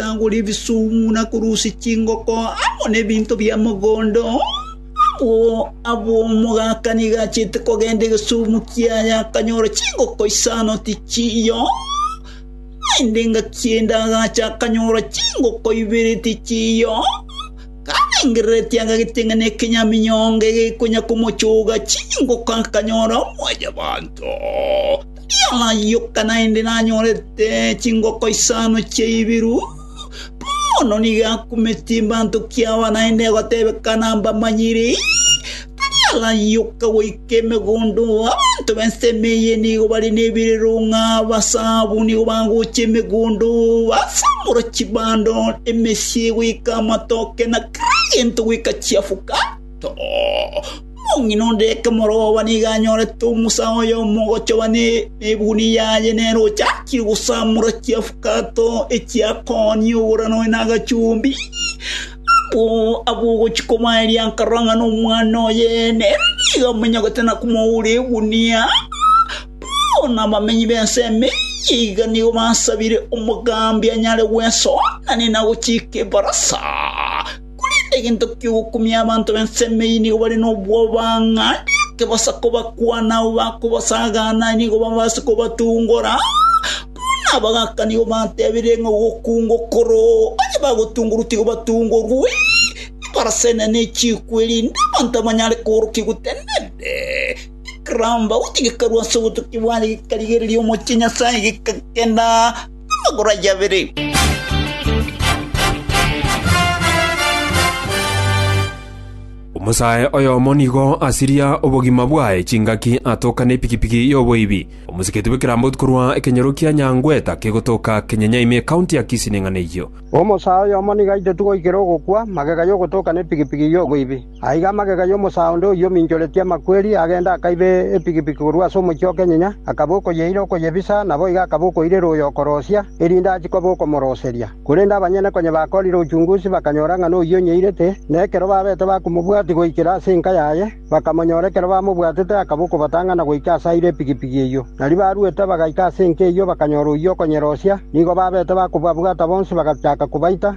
Tagora ebisumu na korusia chingoko amo nebinto bia mogondo. Abwo abwo omogaka nigo achiete kogenda egesumu kiaye akanyora chingoko isano tichiyo. Naende ngaki endagacha akanyora chingoko ibere tichiyo. Karengereretie akageteng'ena ekenyaminyongo egekonya komochoga chingoko akanyora mwanyabanto. Yarayoka naende nanyorete chingoko isano chiaibiru. Bono nigo akumetie embanto kiaoa naende egotebekana mbamanyire. Tari arayoka goika emegondo, abanto b'ensemo eye nigo bare nebirerong'a basabu nigo bagocha emegondo, basamora chibando, emesie goika amatoke na kera gento goika chiafuka. Omong'ina onde ekemoroba nigo anyorete omosa oye omogochoba nebuni yaye nere ochakire gosamora chiafukato echiakooni ogorana oye nagachumbi. Abwo abwo ogochia kobaeria nkarora ng'a nomwana oye nere nigo amonyogete na komoura egunia. Paulo na abamenyi b'ense eyio iga nigo basabire omogambi anyare gwesoa, na nigo nagochika ebarasa. Korende egento ki'ogokumia abanto b'ensemo eyio nigo bare nobwoba, ng'a ekebosa kobakwana abo bakobasagana nigo babaase kobatungora, buna abagaka nigo batebirie ng'a ogokunga okoro, onye bagotungorwa tiga batungorwe, ebarasa enene echikwe, erinde abanto abanyare koorokia gotenenete. Ekeramba, gotiga ekarue ase obotukia bwaye gekarigereria omochie Nyasaye, gekagenda. Amagoro ayio abere. Omosae oyomo nigo asiria obogima bwaye chingaki atoka nepikipiki y'oboibi. Omosiketi bw'ekeramboti korwa ekenyoro kia Nyangweta kegotoka Kenyenyaime ekaunti ya Kisii neng'ana eyio. Omosae oyomo nigo aitotigwe goikera ogokwa magega y'ogotoka nepikipiki y'oboibi. Aiga amagega y'omosaa onde oyio ominchoretie amakweri, agenda akaiba epigipigi korwa ase omochie o kenyenya, akaba okoyeira okoyebisa, naboigo akaba okoirera oyo okorosia, erinde achie koba okomoroseria. Korende abanyene konya bakorire ochungusi, bakanyora ng'a noyio onyeirete, na ekero babete bakomobwatia goikera ase enka yaye, bakamonyora ekero bamobwatete akaba okobatang'ana goika ase aire epigipigi eyio. Nario baruete bagaika ase enka eyio bakanyora oyio okonyerosia, nigo babete bakobabwata bonsi bagachaka kobaita,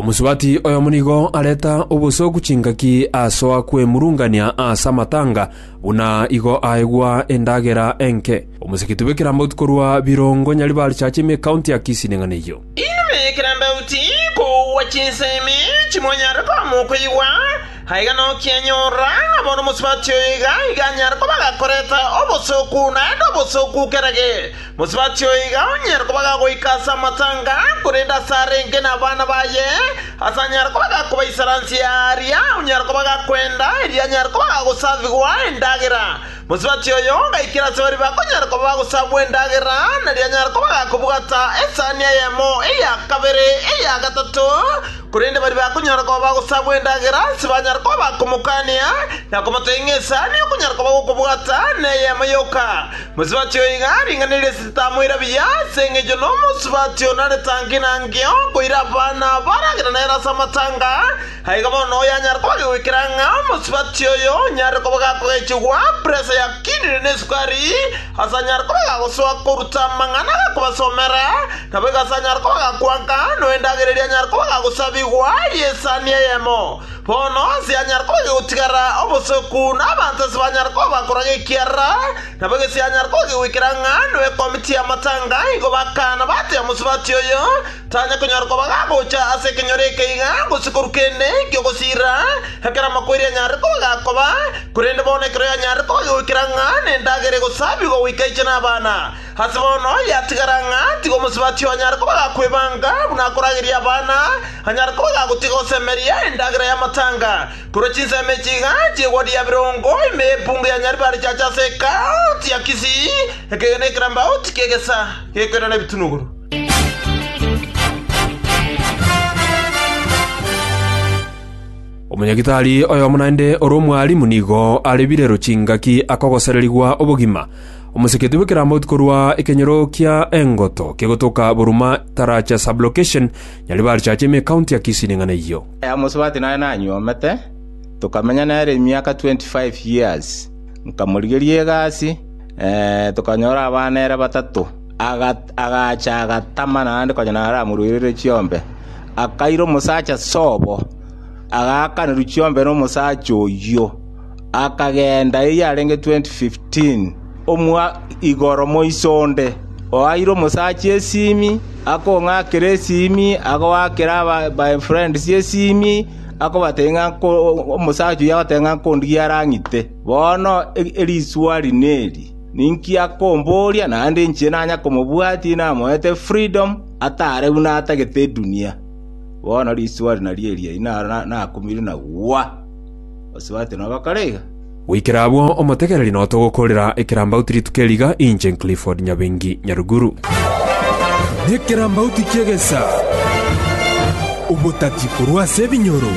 Omosubati oyomo nigo areta obosooku chingaki asoa kwemurungania aase amatanga, buna igo aegwa endagera enke. Omoseketi bw'ekerambaut korwa Birongo nyaribarichache ime ekaunti ya Kisii neng'ana eyio. Inwe ekerambauti, kogwa chinsemi chimonyare koba mokoigwa, aiga nokianyorora ng'a bono omosubati oyo iga iga anyare koba gakorete obosooku naende obosooku kerage. Mosubati oyo iga onyare koba gagoika ase amatanga, korende ase arenge nabana baye, ase anyare koba gakobaisaransia aaria onyare koba gakwenda, erio anyare koba gagosavigwa endagera. Mosubati oyo gaikera ase baria bakonyara koba bagosabwa endagera, na rianyara koba gakobwata esani eyemo, eya kabere, eya gatato, korende baria bakonyara koba bagosabwa endagera tibanyara koba bakomokania na komotebia ng'a esani okonyara koba gokobwata neyemo yoka. Mosubati oyo iga ring'ana eria esese tamoira buya, ase engencho nomosubati onare tangi na ngio koira abana baragera nere ase amatanga, Na igo bono oyanyare koba agegoikera ng'a omosubati oyo onyare koba gakogechigwa presa yakinire nesukari, asanyare koba agagosoa koruta amang'ana agakobasomera, naboigo asanyare koba agakwanka, noendagera eria anyare koba agagosabigwa y'esani eyemo. Bono ase anyare koba agegotigara obosoku, na abanto ase banyare koba bakoraga ekiara, naboigo ase anyare koba agegoikera ng'a noekomiti y'amatanga, igo bakana batebia omosubati oyo, Tanya konyara koba gagocha ase ekenyoro eke iga, gose korwa kende eki'ogosiirera, ekero amakweri anyarire koba gakoba, korende bono ekero yanyarire koba gegoikera ng'a nendagera egosabigwa goika aiche nabana, ase bono yatigara ng'a tiga omosubati oo anyare koba gakwebanga buna akorageria abana, anyare koba gagotiga gosemeria endagera y'amatanga. Korwa chinsemo echi iga chi'egwadi ya birongo ime y'epungu ya Nyaribari chiacha ase ekaunti ya Kisii, ekegena ekerambaoti ki'egesa gekoirana ebitunuguru. Omonyagetari oyomo naende ore omwarimu nigo arebirero chingaki akogosererigwa obogima. Omoseketu bw'ekeramauti korwa ekenyoro kia engoto kegotoka Buruma taracha sub-location, Nyaribari church ime ecounty ya Kisii neng'ana eyio. Omosubati naye nanyuomete, tokamenya nere emiaka 25 years. Nkamorigeria egasi, tokanyora abana ere batato. Agacha agatama naende konya naramoruerere chiombe. Akaira omosacha sobo, agaakanerwa chiombe nomosacha oyio, akagenda eyio arenge 2015, omwa igoro moiso onde. Oaeire omosacha esimi, akong'akera esimi, agoakera aba my friends esimi, akobatebia ng'a omosacha oyio agotenena ng'a nkondigiare ang'ite. Bono eriswari neri, Ninki akombooria naende inche nanya komobwatia namoete freedom ataare buna atagete edunia? Bono riswali nario eria inaro nakumire na gwa. Osubate nogokora iga? Goikera abwo omotegereri nao togokorera ekerambauti rituko eri iga, inche Clifford Nyabengi Nyaruguru. Nekerambauti ki'egesaa, Obotati korwa ase ebinyoro.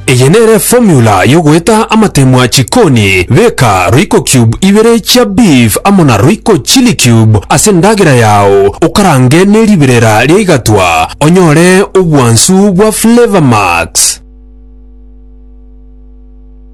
Eye nere formula yogoeta amatemwa chikoni, beka royco cube ibere chia beef amo na royco chili cube ase endagera yao okarange neriberera ria igatwa onyore obwansu bwa flavor max.